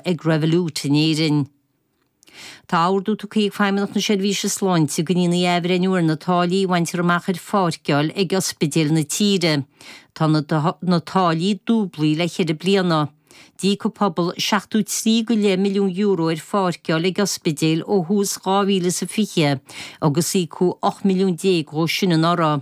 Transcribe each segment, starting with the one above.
ag Revolut in Éirinn. Tá ordú tugtha ag Feidhmeannacht na Seirbhíse Sláinte go ndéanfaí athbhreithniú ar na táillí a bhaintear amach ar pháirceáil ag ospidéil na tíre. Tá na táillí dúblaithe le ceithre bliana. D'íoc an pobal seachtó trí go leith milliún euro ar pháirceáil ag ospidéil ó thús 2020 agus íocadh ocht milliún déag dhe sin anuraidh.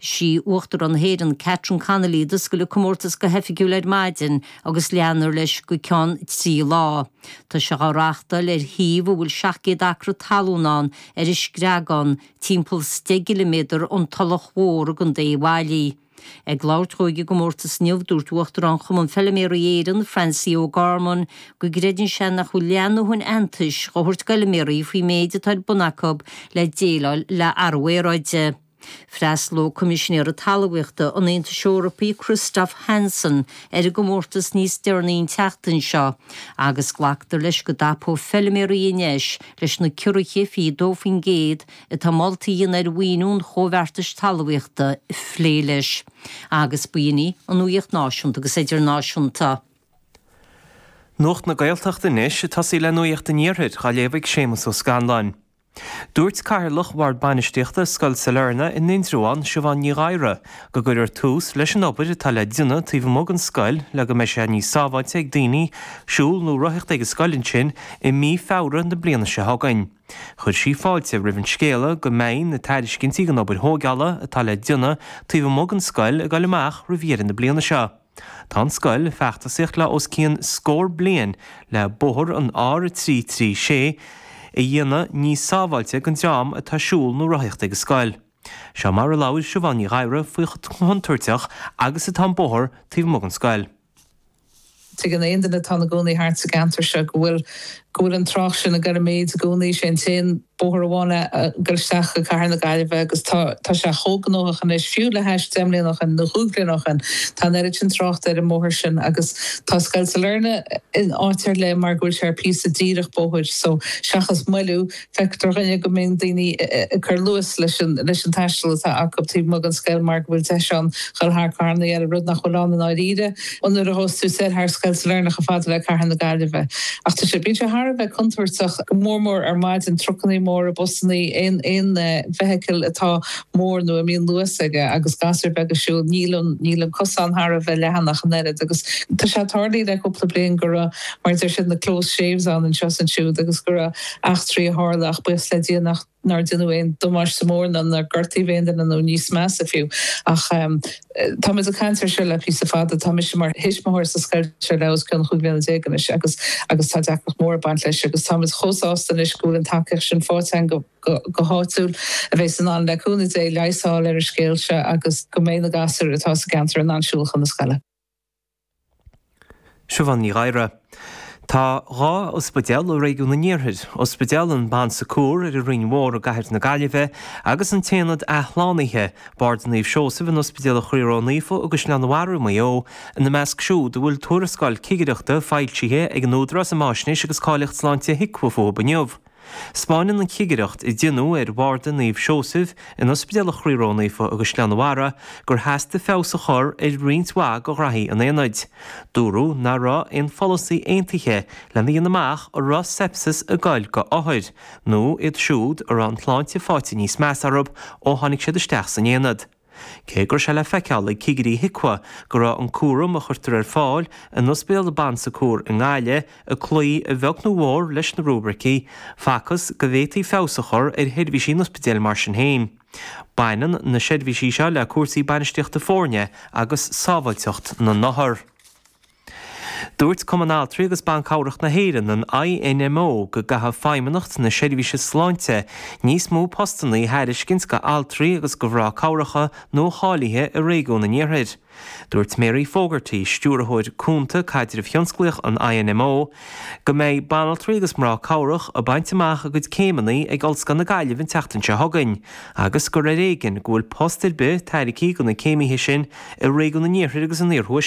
Is í Uachtarán na hÉireann, Catherine Connolly, a d'oscail an comórtas go hoifigiúil ar maidin agus leanfar leis go ceann trí lá. Tá sé á reáchtáil ar shuíomh a bhfuil 700 acra talún ann ar an Screagán, timpeall 10 gciliméadar ón Tulach Mhór i gContae Uíbh Fhailí. Ag labhairt dhó ag an gcomórtas inniu, dúirt Uachtarán Chumann Feiliméaraí Éireann, Francie O'Gorman, go gcreideann sé nach bhfuil leath na haitheantais dhá thabhairt d'fheilméaraí faoin méid atá ar bun acu le déileáil le athrú aeráide. Freastalóidh Coimisinéara Talmhaíochta an Aontais Eorpaigh Christoph Hansen ar an gcomórtas níos deireanaí an tseachtain seo agus glactar leis go dtapóidh feilméaraí an deis leis na ciorruithe 22% atá molta a dhéanamh ar mhaoiniú an Chomhbheartais Talmhaíochta a phlé leis agus b'in í an nuaíocht náisiúnta agus idirnáisiúnta. Nuacht na Gaeltachta anois ag tosaí le nuaíocht an iarthair, dhá léamh ag Séamus Ó Scanláin. Dúirt Cathaoirleach Bhord Bainistíochta Scoil Sailearna in Indreabhán, Siubhán Ní Ghadhra, go gcuirfear tús leis an obair atá le déanamh taobh amuigh den scoil le go mbeidh sé níos sábháilte ag daoine siúl nó rothaíocht ag an scoil ansin i mí Feabhra na bliana seo chugainn. Chuir sí fáilte roimh an scéala go mbeidh na tairiscintí don obair thógála atá le déanamh taobh amuigh den scoil ag dul amach roimh dheireadh na bliana seo. Tá an scoil feachtasaíocht le os cionn scór bliain le bóthar an R336 a dhéanamh níos sábháilte ag an dream atá ag siúl nó rothaíocht ag an scoil. Seo mar a labhair Siubhán Ní Ghadhra faoi chomh contúirteach agus atá an bóthar taobh amuigh den scoil. Tuigeann aon duine atá ina gcónaí thart sa gceantar seo go bhfuil go bhfuil an trácht sin ag dul i méid i gcónaí. Sé an t-aon. Bóthar amháin ag dul isteach go cathair na Gaillimhe agus tá sé chomh gnóthach anois, fiú le hais deich mbliana ó shin nó chúig bhliana ó shin, tá an oiread sin tráchta ar an mbóthar sin agus tá Scoil Sailearna in áit ar leith mar go bhfuil sé ar phíosa díreach bóthair so seachas moilliú, feictear dhúinn go mbíonn daoine ag cur luas leis an taisteal atá acu taobh amuigh den scoil mar go bhfuil deis ann dhul thar carranna eile, rud nach bhfuil ann i ndáiríre. Ón uair a thosós tú ag dul thar Scoil Sailearna chomh fada le cathair na Gaillimhe. Ach tá sé, bíonn sé thar a bheith contúirteach, go mór mór ar maidin, trucannaí móra, busannaí, aon, aon vehicle atá mór nó a mbíonn luas aige agus gasúir bheaga ag siúl, níl an, níl an cosán thar a bheith leathan ach an oiread agus tá sé tarlaithe le cúpla bliain go raibh, mar a deir siad, na close shaves ann anseo is ansiúd agus go raibh eachtraí a tharla ach buíochas le Dia nach. nár deineadh aon damáiste mór ná nár gortaíodh aon duine nó níos measa fiú. Ach táimid ag caint air seo le píosa fada. Tá mise mar thuismitheoir sa scoil seo ar feadh os cionn chúig bhliana déag anois agus agus tá deacracht mór ag baint leis agus táimid chomh sásta anois go bhfuil an tacaíocht sin fáighte againn go háitiúil a bhéas in ann, le cúnamh Dé, leigheas a fháil ar an scéal seo agus go mbeidh na gasúir atá sa gceantar in ann siúl chun na scoile. Siubhán Ní Ghadhra. Tá dhá ospidéal i réigiún an iarthair, Ospidéal an Bon Secours ar an Rinn Mhór i gcathair na Gaillimhe agus an tAonad Athshlánaithe, Barda Naomh Seosamh in Ospidéal Chroí Ró-Naofa i gCaisleán an Bharraigh i Maigh Eo, ina measc siúd a bhfuil tuarascáil cigireachta foilsithe ag an Údarás um Fháisnéis agus Cáilíocht Sláinte HIQA fúthub inniu. 'Spáineann an chigireacht a deineadh ar bharda Naomh Seosaimh in Ospidéal Chroí Ró-Naofa i gCaisleán an Bharraigh gur theastaigh feabhas a chur ar roinnt mhaith go ghraithí an aonaid. Dúradh ná raibh aon pholasaí aontaithe lena dhéanamh amach an raibh sepsis ag goil go othair nó iad siúd a raibh an tsláinte fáite níos measa orthub ó tháinig siad isteach san aonad. Cé go raibh sé le feiceáil ag cigirí HIQA go raibh an cúram a chuirtear ar fáil in Ospidéal an Bon Secours i nGaillimh ag cloí a bheag nó a mhór leis na rúibricí, facthas go bhféadfaí feabhas a chur ar sheirbhísí an ospidéil mar sin féin. Baineann na seirbhísí seo le cúrsaí bainistíochta foirne agus sábháilteacht na n-othar. Dúirt Cumann Altraí agus Ban Cabhrach na hÉireann, an INMO, go gcaithfeadh Feidhmeannacht na Seirbhíse Sláinte níos mó postanna a thairiscint go altraí agus go mhrá cabhrach nuacháilithe i réigiún an iarthair. Dúirt Mary Fogarty, Stiúrthóir Cúnta Caidrimh Thionsclaíoch an INMO, go mbeidh banaltraí agus mná cabhrach ag baint amach a gcuid céimeanna ag Ollscoil na Gaillimhe an tseachtain seo chugainn agus gur ar éigean go bhfuil post ar bith tairgthe go na céimithe sin i réigiún an iarthair agus an iarthuaiscirt.